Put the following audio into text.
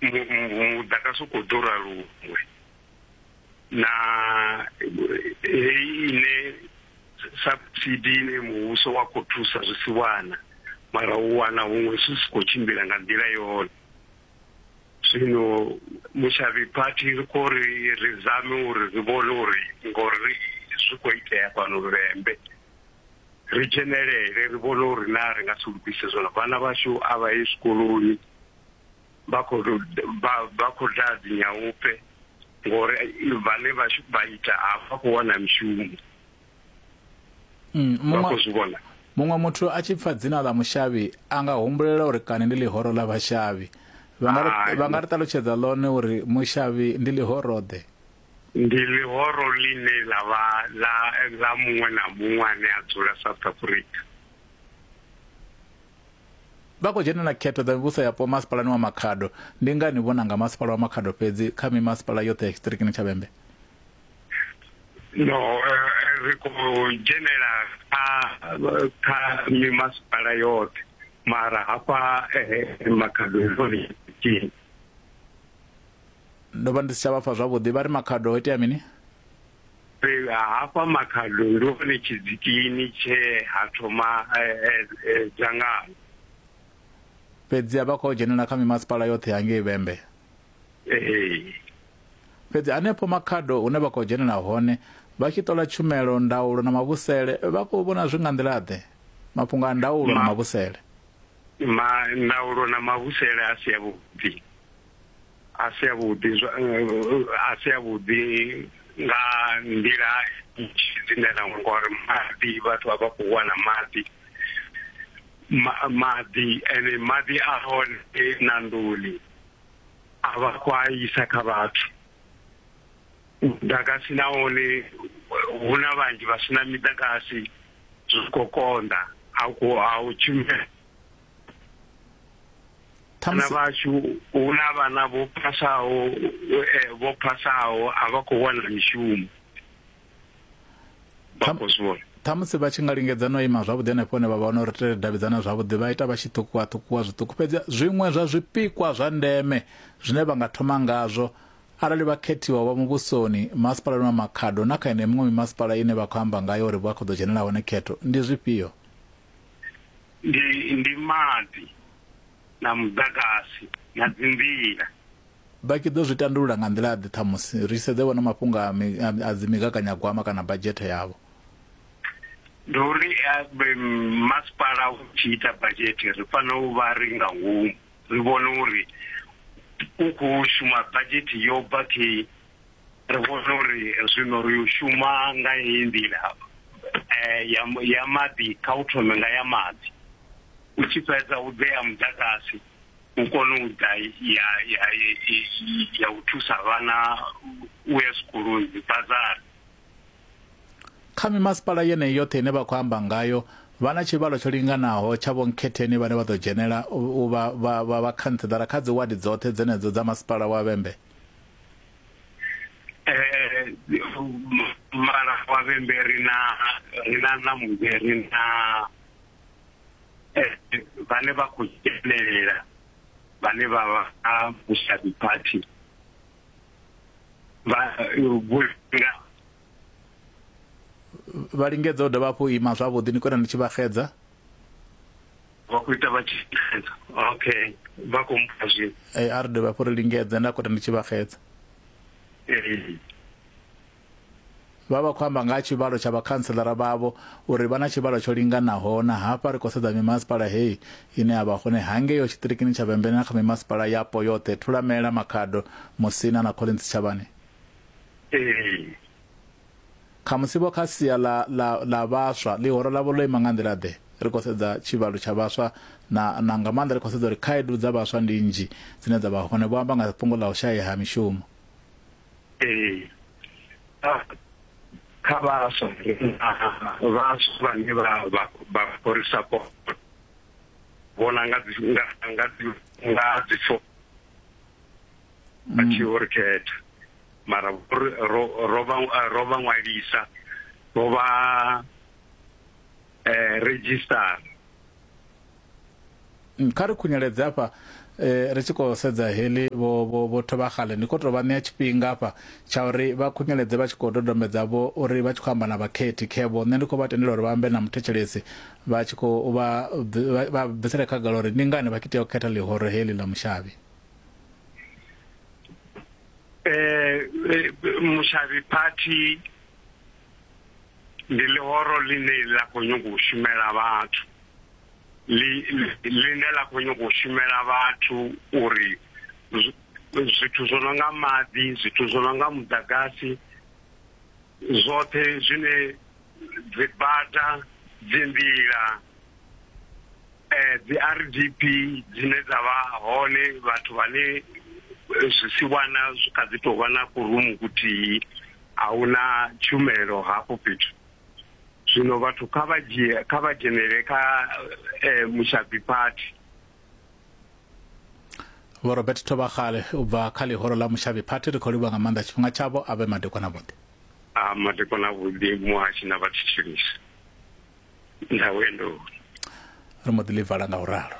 mudagasi u khou ḓura luṅwe na heyi ine subsidi ine muvhuso wa khou thusa zwi si wana mara u wana huṅwe zwi si khou tshimbila nga nḓila yone zwino mushavhi phathi ri khou ri ri zame uri ri vhone uri ngori zwi khou itea fhano luvhembe ri dzhenelele ri vhone uri na ri nga si lugise zwona vhana vhashu a vha ye zwikoloni vha khou vha khou daa dzinyaupe ngori vhane vha vha ita hafha khou wana mishumo mm, vha khou zwi vhona muṅwe muthu a tshi pfa dzina ḽa mushavhi a nga humbulela uri kani ndi ḽihoro ḽa vhashavhi vha nga ri ṱalutshedza ḽone uri mushavhi ndi ḽihoroḓe ndi ḽihoro ḽine ḽa vha ḽa muṅwe na muṅwe ane a dzula south africa Vha khou dzhenela khetho dza mivhuso yapo masipalani wa Makhado. Ndi ngani vho nanga masipala wa Makhado fhedzi kha mimasipala yoṱhe ya tshiṱirikini tsha Vhembe? No, ri khou dzhenela kha kha mimasipala yoṱhe mara hafha Makhado hone tsini. Ndo vha ndi si tsha vha pfa zwavhuḓi, vha ri Makhado ho itea mini? fhedzi hafha makhado ndi hone tshidzikini tshe ha thoma eh, eh, eh, dzangano fhedzi a vha khou dzhenela kha mimasipala yoṱhe ya ngei vhembe ee fhedzi hanefho makhado hune vha khou dzhenela hone vha tshi ṱola tshumelo ndaulo na mavhusele vha khou vhona zwi nga nḓila-ḓe mafhungo a ndaulo na Ma- mavhusele ma ndaulo na mavhusele a si avhuḓi a si a vhuḓi a si a vhuḓi nga nḓila dzine na ngori maḓi vhathu vha vha khou wana maḓi maḓi ene maḓi a hone na nḓuni a vha khou a isa kha vhathu muḓagasi na wone hu na vhanzhi vha si na miḓagasi zwi khou konḓa a khou a u tshumela vhana vhashu hu na vhana vho phasaho eh, vho phasaho a vha khou wana mishumo vha khou zwi vhona ṱhamusi vha tshi nga lingedza no ima zwavhuḓi henefho hone vha vha wana uri ri davhidzana zwavhuḓi vha ita vha tshi ṱhukuwa ṱhukuwa zwiṱuku fhedzi zwiṅwe zwa zwipikwa zwa ndeme zwine vha nga thoma ngazwo arali vha khethiwa vha muvhusoni masipalani wa makhado na kha ine miṅwe mimasipala ine vha khou amba ngayo uri vha khou ḓo dzhenela hone khetho ndi zwifhio ndi ndi maḓi na muḓagasi na dzinḓila vha tshi ḓo zwi tandulula nga nḓila ḓe ṱhamusi ri sedze vhona mafhungo a mi- a- a dzi migaganyagwama kana badzhethe yavho ndi uri eh, be- masipala u tshi ita badzhete ri fanela u vha ri nga ngomu ri vhone uri u khou shuma badzhete yo bva khe ri vhone uri zwino ri u shuma nga heyi nḓila eh, ya ya maḓi kha u thome nga ya maḓi u tshi fhedza u ḓe ya muḓagasi u kone u ḓa ya ya ya u thusa vhana u ya zwikoloni dzibazari kha mimasipala yeneyi yoṱhe ine vha khou amba ngayo vha na tshivhalo tsho linganaho tsha vhonkhetheni vhane vha ḓo dzhenela u vha vhakhantseḓara kha dzi wadi dzoṱhe dzenedzo dza masipala wa vhembe eh mara wa vhembe ri na ri na na muzwe ri na eh vhane vha khou dzhenelela vhane vha vha a mushabi party vha vhulunga vha lingedza u dovha hafhu ima zwavhuḓi ni kona ni tshi vha xedza vha khou ita vha tshi xedza okay vha khou mpha zwi ee a ri dovha hafhu ri lingedze nda kona ni tshi vha xedza vha vha khou amba nga ha tshivhalo tsha vhakhanselara vhavho uri vha na tshivhalo tsho linganaho na hafha ri khou sedza mimasipala heyi ine a vha hone hangeyo tshiṱirikini tsha vhembene na kha mimasipala yapo yoṱhe thulamela makhado musina na collins tshavhane ee khamusi vho kha sia ḽa ḽa ḽa vhaswa ḽihoro ḽavho ḽo ima nga nḓila ḓe ri khou sedza tshivhalo tsha vhaswa na na nga maanḓa ri khou sedza uri khaedu dza vhaswa ndi nnzhi dzine dza vha hone vho amba nga fhungo ḽa u shaya ha mishumo ee ah, kha vhaswa vhaswa vhane vha vha vha khou ri support vhona nga dzi nga nga dzi nga dzi a tshi ho ri khetha mara ro vha ṅwalisa vho vha eh, registara mm, kha ri khunyeledze afha eh, ri tshi khou sedza heḽi vho thovha xale ni khou tou vha ṋea tshifhinga afha tsha uri vha khunyeledze vha tshi khou dodombedza vho uri vha tshi khou amba na vhakhethi khevho nṋe ndi khou vha tendela uri vha ambe na muthetshelesi vha tshi khou vha bvisele khagala uri ndi ngani vha tshi tea u khetha ḽihoro heḽi ḽa mushavhi eh, eh mushavhi party ndi ḽihoro ḽine ḽa khou nyanga u shumela vhathu ḽine ḽa khou nyanga u shumela vhathu uri zwithu zwo no nga maḓi zwithu zwo no nga muḓagasi zwoṱhe zwine dzibada dzi nḓila eh, dzi rdp dzine dza vha hone vhathu vhane eh, zwi si wana zwi kha dzi tou vha na kurumu kuthihi a hu na tshumelo hafho fhethu zwino vhathu kha vha dzhie kha vha dzhenele kha eh, mushabi party vho robert thovhagale u bva kha ḽihoro ḽa mushabi party ri khou livha nga maanḓa tshifhinga tshavho a vhe madekwana vhuḓi a madekwana vhuḓi muhashi na vhathitshilisi nda ri mbo ḓi ḽi vala nga u ralo